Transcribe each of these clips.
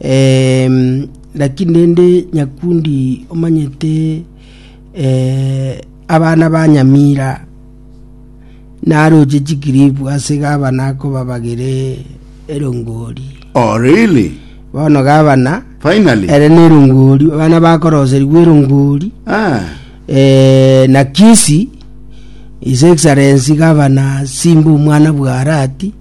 Em, lakini rende nyakundi omanyete eh, abana ba nyamira naroche chikiribu ase gabana akobabagere erongori Oh, really? bono gabana Finally? ere na erongori abana bakoroserigwa erongori Ah, eh, na kisi his excellency gabana simba omwana bwarati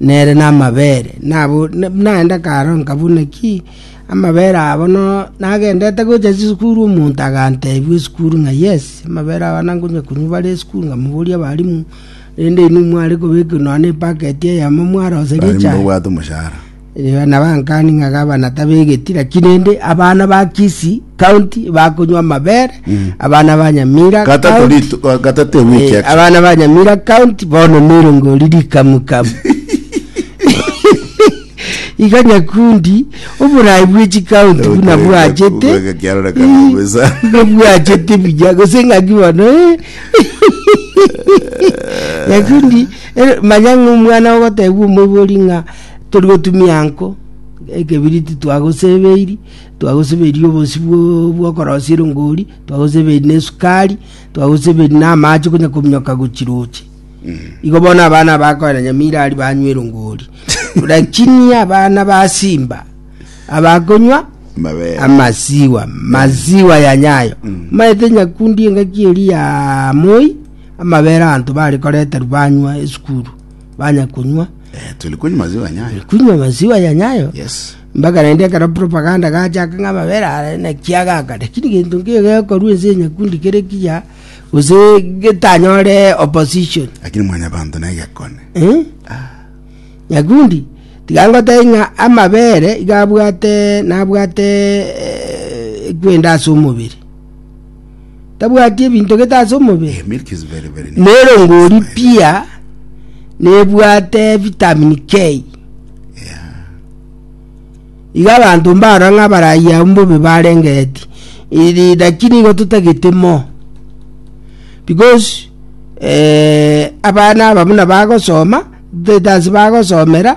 nere namabere, nabo naende karo nkabune ki amabere abo no nagendete gocha chisukuru omonto agantebia esukuru ng'a yes amabere aba nankonya konywa bare esukuru nkamoboria abalimu rende inwe mware kobeka nonye epaketi eyemo mwaroseria echae. Abalimu babwate omoshahara. Yohana abankani ng'a gabana tabegeti, lakini rende abana ba Kisi county bakonywa amabere, abana ba Nyamira Kata county, tori tu- ka- kata te wiki eh, actually. abana ba Nyamira county bono nerongori rikamukamu. Iga Nyakundi oborai bwe chikaunti buna Okay, bwachete. bwega kiarora kana Eh, bweza. iga bwachete buya gose ng'aki bono eh. Nyakundi eh, manya ng'a omwana ogoteebwa omoibori ng'a Tori gotumia nko ekebiriti twagoseberi, twagoseberi obosi bw'okorosia erongori, twagoseberi na esukari, twagoseberi na amache konya kominyoka gochiroche. Mm. Igo bono abana bakoena nyamira ari banywa erongori. Lakini abana ba Simba abakonywa amasiwa masiwa ya nyayo mm. maete nyakundi engaki eri ya moi amabere anto bare koreta rubanywa esukuru banya kunywa Eh, tuli kunywa maziwa ya nyayo. kunywa maziwa ya nyayo Yes. mpaka naende ekero propaganda gachaka ng'a amabere are naki agaka lakini gento nkeiyo gekorwa ense ya nyakundi kere kiya gose getanyore opposition Lakini mwanya bantu naye gekone. Eh? nyakundi tiga ngotebia ng'a amabere iga abwate nabwate eh, ekwenda ase omobere tabwati ebinto gete ase omobere, nere ngori pia nebwate vitamin K. Iga abanto mbarora ng'a abarayia abwo mbobe barengeti iri lakini igo totagete mo because eh, abana aba buna bagosoma, totagete ase bagosomera.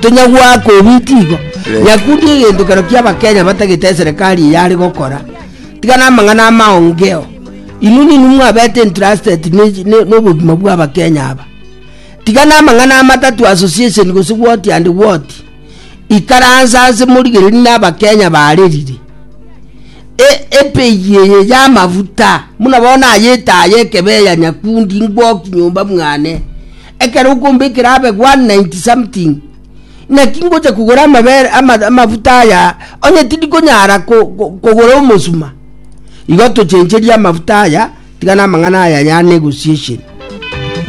Tonyagoaka obiti igo. Nyakundi egento kero kia Abakenya batagete eserekari eye are gokora. Tiga namang'ana amaongeo. Inwe ninwe mwabete entrusted nobogima bwa Abakenya aba. Tiga namang'ana amatatu association gose woti and woti. Ikaransa ase morigereri na Abakenya barerire. E, epegi eye ya amafuta muna bono ayetaye ekebe ya nyakundi ngwoki nyomba mwane. Ekero okomba ekerabe 190 something, naki ngocha kogora amabere ama- amafuta aya, onye tindi konyara ko- ko- kogora omosuma. Igo tochencherie amafuta aya, tiga namang'ana aya ya negotiation.